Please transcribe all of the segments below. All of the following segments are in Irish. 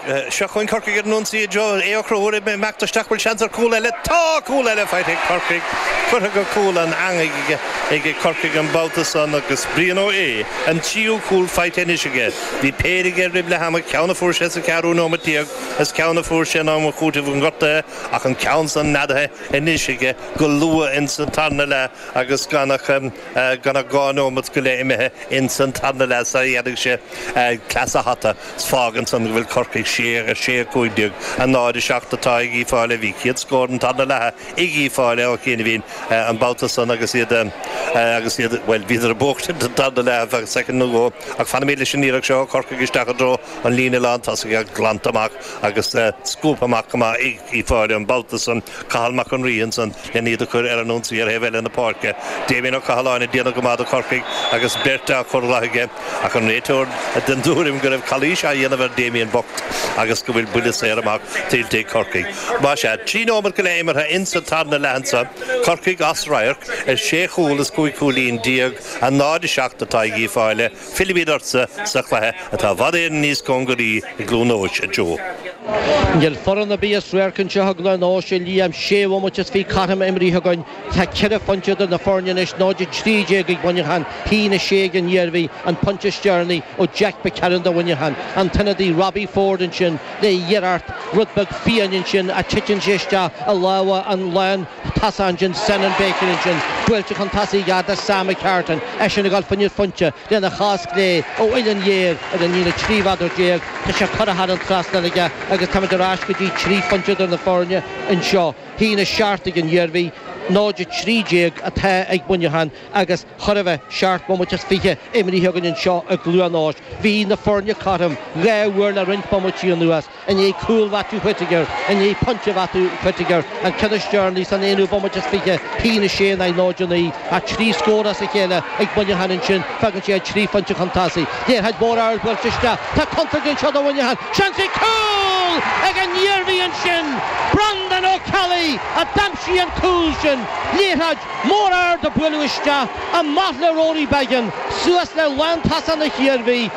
Seo chugainn Corcaigh ar an ionsaí i dtreo Aodh Ó Conchúir ag imeacht isteach, bhfuil seans ar chúl eile? Tá! Cúl eile faighte ag Corcaigh. Curtha go cúl an eangaigh ag Corcaigh an babhta san agus Brian Ó hAodha. an tríú cúl faighte anois aige. Bhí péire aige roimh leath ama, ceann a fuair sé sa cheathrú nóiméad déag is ceann a fuair sé in am chúitimh na ngortuithe ach an ceann san neadaithe anois aige go luath ins an tarna leath agus gan ach gan ach dhá nóimeat go leith imithe ins an tarna leath sara dhéanfaidh sé cleas an hata 's fágann san go bhfuil Corcaigh a sé, a cúig déag, a náid a seacht atá ag Uí Fáile bhí céad scór an tarna leatha ag Uí Fáile ó chianaibhín an babhta san agus iad, agus iad, bhuel, bhíodar ag buachtaint an tarna leath, ar feadh soicind nó dhó ach fanaimid leis an iarracht seo ó Chorcaigh isteach i dtreo an líne lántosaigh, glanta amach agus scuabtha amach go maith ag Uí Fáile an babhta san. Cathal Mac an Rí ansan len iad a chur ar an ionsaí ar thaobh eile na páirce. Damien Ó Cathaláin ag déanamh go maith do Chorcaigh agus beirt á chur uaidh aige, ach an réiteoir den tuairim go raibh calaois á dhéanamh ar Damien bocht agus go bhfuil buille saor amach tuillte ag Corcaigh. Más ea, trí nóimeat go leith imeartha insa tarna leath anso, Corcaigh as radharc ar shé chúl is cúig chúilín déag, 0, 7 atá ag Uí Fáile, Fillfimid ortsa sa chluiche atá i bhfad Éireann níos cóngaraí i gCluain Eois, a Joe. Níl foireann ar bith as radharc anseo i gCluain Eois, a Liam. Sé bhomaite is fiche cothrom imrithe againn. Tá ceithre phointe idir na foirne anois, 0-13 ag Muineachán, 1-6 ag an Iarmhí, an pointe is deireanaí ó Jack McCarron do Mhuineachán. An t-ionadaí Robbie Forde ansin le iarracht rud beag fiáin ansin ach titeann sé isteach i lámha an tosaí ansin, Senan Baker ansin, buailte chun tosaigh go dtí Sam McCartan, eisean ag dul fá choinne pointe lena chos chlé ó uillinn ghéar ar an líne 13 mheadar. Tá sé curtha thar an trasnán aige agus táimid ar ais go dtí trí phointe idir na foirne anseo. 1-7 ag an Iarmhí, 0-13 atá ag Muineachán agus chóir a bheith seacht mbomaite is fiche imrithe againn anseo i gCluain Eois. Bhí na foirne cothrom dhá uair le roinnt bomaití anuas. I ndiaidh cúl Mhaitiú Whittaker, i ndiaidh pointe Mhaitiú Whittaker, an ceann is deireanaí san aonú bomaite is fiche, 1-6 in aghaidh 0 9, ach trí scór as a chéile ag Muineachán ansin, fágann sé iad trí phointe chun tosaigh. Liathróid mór ard buailte isteach, tá contúirt anseo do Mhuineachán, seans ag cúl! Ag an Iarmhí ansin, Breandán Ó Ceallaigh a d'aimsigh an cúl sin. Liathróid mór ard a buaileadh isteach, amach le Rory Beggan, suas le lántosaithe na hIarmhí.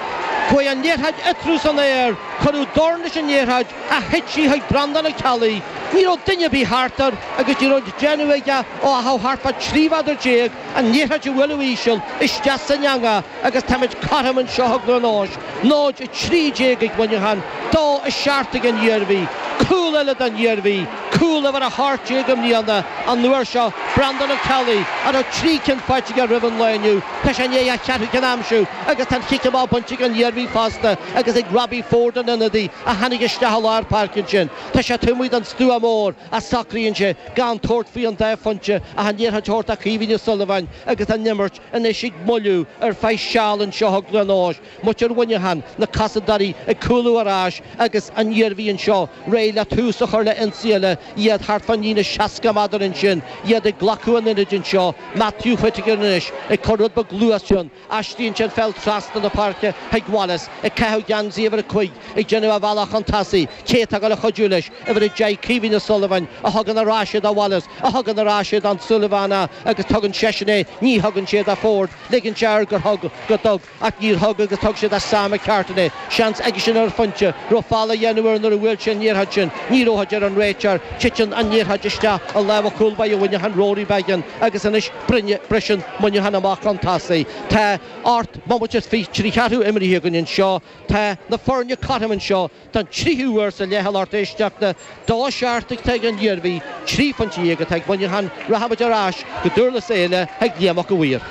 Chuaigh an liathróid eatarthu san aer. Cuireadh dorn leis an liathróid ach thit sí chuig Breandán Ó Ceallaigh. Ní raibh duine ar bith thart air agus ní raibh le déanamh aige ó achar thart fá trí mheadar déag ach an liathróid a bhualadh íseal isteach san eangach agus táimid cothrom anseo i gCluain Eois 0, 13 ag Muineachán, 2, 7 ag an Iarmhí. Cúl eile don Iarmhí, cúl uimhir 18 i mbliana, an uair seo Breandán Ó Ceallaigh, a raibh trí cinn faighte aige roimh an lá inniu, tá sé i ndiaidh a cheathrú ceann a aimsiú. Agus tá an chic amach bainte ag an Iarmhí fosta agus ag Robbie Forde, an t-ionadaí a tháinig isteach i lár páirce ansin. Tá sé taobh amuigh den stua mór ach socraíonn sé gan tabhairt faoi an dá phointe ach an liathróid a thabhairt do Kevin O'Sullivan agus an imirt anois ag moilliú ar feadh seal anseo tugann anois muintir Mhuineacháin na cosantóirí ag cúlú ar ais agus an Iarmhí anseo réidh le tús a chur le ionsaí eile iad thart fán líne 60 meadar ansin iad ag glacadh an ionaid anseo Matthew Whittaker anois ag cur rud beag luais ann Aistríonn sé an pheil trasna na páirce chuig Wallace, ag caitheamh geansaí uimhir a cúig, ag déanamh a bhealach chun tosaigh. Cé atá ag gabháil a chuidiú leis, uimhir a deich, Kevin O'Sullivan, a thugann ar ais é do Wallace, a thugann ar ais é don Sullivan agus tugann seisean é ní thugann sé do Forde, ligeann sé air gur thug, go dtug, ach níor thug agus thug sé do Sam McCartan é. Seans aigesean ar an phointe, raibh feall á dhéanamh air nuair a bhuail sé an liathróid sin, ní raibh, a deir an réiteoir. Titeann an liathróid isteach i lámha chúl báire Mhuineacháin Rory Beggan agus anois, briseann Muineachán amach chun tosaigh. Tá ocht mbomaite is fiche trí cheathrú imrithe againn anseo. Tá na foirne cothrom anseo don tríú huair sa leath, a lucht éisteachta. Dó a seacht atá ag an Iarmhí, trí phointe dhéag atá ag Muineachán. Rachaimid ar ais go Dúrlas Éile chuig Liam Mac a' Mhaoir.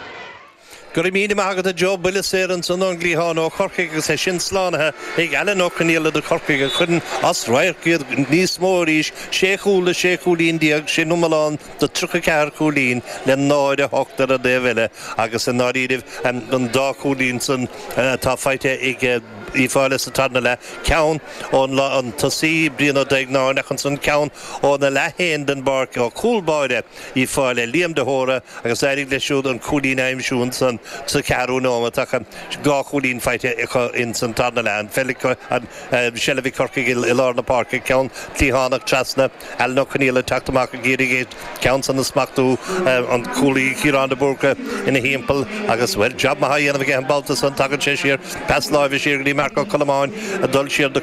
Go raibh míle maith agat a Joe, buille saor ansan ón gcliathán ó Chorcaigh agus é sin slánaithe ag Alan Ó Conghaile do Corcaigh a chuireann as radharc iad níos mó arís, sé chúl le sé chúilín déag, sin iomlán de tríocha ceathair cúilín le náid a hocht ar an dtaobh eile agus i ndáiríribh an dá chúilín san atá faighte ag Uíbh Fhailí sa tarna leath, ceann ón an tosaí, Brian Ó Duígeannáin, ach ansan ceann óna leath fhéin den bpáirc, ó chúl báire. Uíbh Fhailí Liam de hÓra agus d'éirigh leis siúd an cúilín a aimsiú ansan sa cheathrú nóimeat ach dhá chúilín faighte acu ins an tarna leath. An pheil ag seilbh ag Corcaigh i lár na páirce, ceann cliathánach trasna, Alan Ó Conghaile ag teacht amach ag iarraidh an ceann san a smachtú, an cúlaí Ciarán de Búrca ina thimpeall agus, bhuel, jab maith á dhéanamh aige an babhta san. Tagann sé siar, pas láimhe siar go dtí Marc Ó Colmáin ag dul siar do